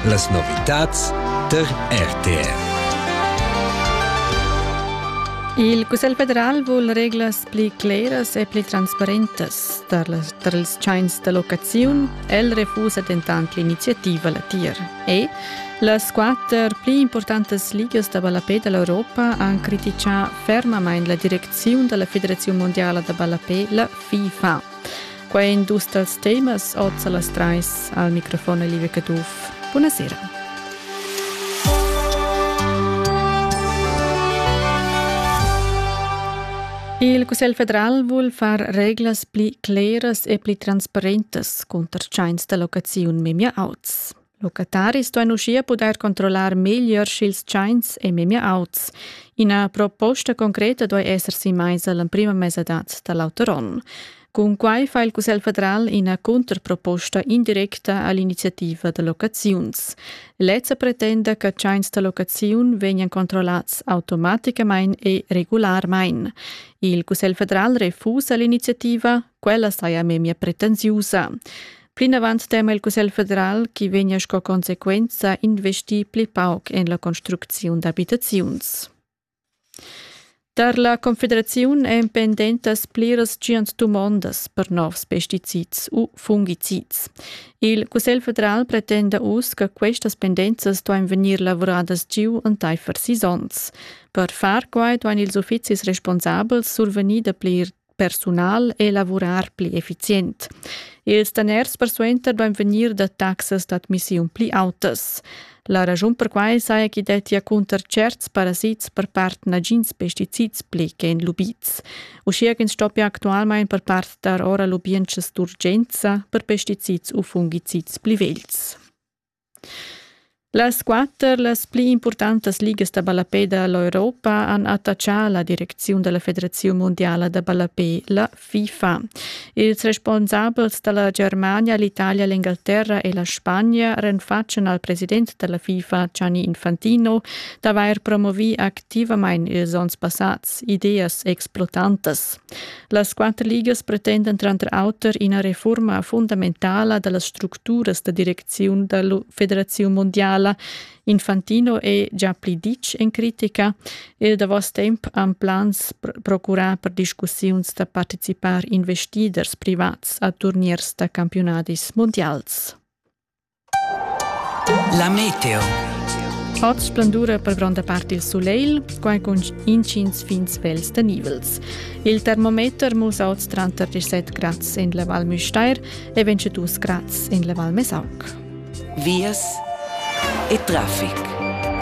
Las novitads tar RTR. Il Cussegl federal vul reglas pli cleras e pli transparentas tar, las, tar ils tschains da locaziun. El refusa dentant l'iniziativa latier. E las quatter pli importantas ligas da ballapè da l'Europa han critichà fermamain la direcziun da la Federaziun mondiala da ballapè, la FIFA. Quai è in dus dals temas oz a las trais al microfon Olivia Caduff. Buonasera. Il Cussegl federal vul far reglas pli cleras e pli transparentas cunter tschains da locaziun memia auts. Locataris duein uschia pudair controllar meglier sch'ils tschains ei memia auts. Ina proposta concreta duei esser sin meisa l'emprima mesadad da l'auter onn. Cun quai fa il Cussegl federal ina contraproposta indirecta all'iniziativa da locaziuns. Lezza pretenda che tschains da locaziun vegnan controllats automaticamain e regularmain. Il Cussegl federal refusa l'iniziativa, Quella saja memia pretensiusa. Plinavant tema il Cussegl federal che vegnia sco consequenza investir pli pauc en la construcziun d'abitaziuns. Tar la Confederaziun èn pendentas pliras tschient dumondas per novs pesticids u fungicids. Il Cussegl federal pretenda uss che questas pendenzas duain vegnir lavuradas giu entaifer sis onns. Per far quai duain ils uffizis responsabels survegnir dapli persunal e lavurar pli effizient. Ils daners persuenter duein vegnir da taxas d'admissiun pli autas. La raschun per quai saja chi dettia cunter certs parasits per part nagins pesticids pli che en lubids. Uschia ch'ins stoppia actualmain per part dar ora lubientschas d'urgenza per pesticids u fungicids pli vegls. Las quatter las pli impurtantas ligas da ballapè da l'Europa han attachà la direcziun da la Federaziun mundiala da ballapè, la FIFA. Ils responsabels da la Germania, l'Italia, l'Engalterra e la Spagna renfatschan al president da la FIFA, Gianni Infantino, d'avair promovì activamain ils onns passads ideas explotantas. Las quatter ligas pretendan tranter auter ina refurma fundamentala da las structuras da direcziun da la Federaziun mondiala. Infantino è già pli ditg en critica. Il davos temp han plans procurà per discussiuns da participar investiders privats a turniers da campiunadis mundials. La meteo. Fat splendura per gronda part il sulegl, quai cun intgins fin svels tenivels. Il termometer musa oz tranter 17 grads en la Val Müstair e 22 grads en la Val Mesac. Vias e traffic.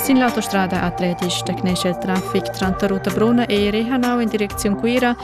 Sin l'autostrada atletisch tecnesce il traffic tranter Ruta Bruna e Rehanau in direcziun Cuira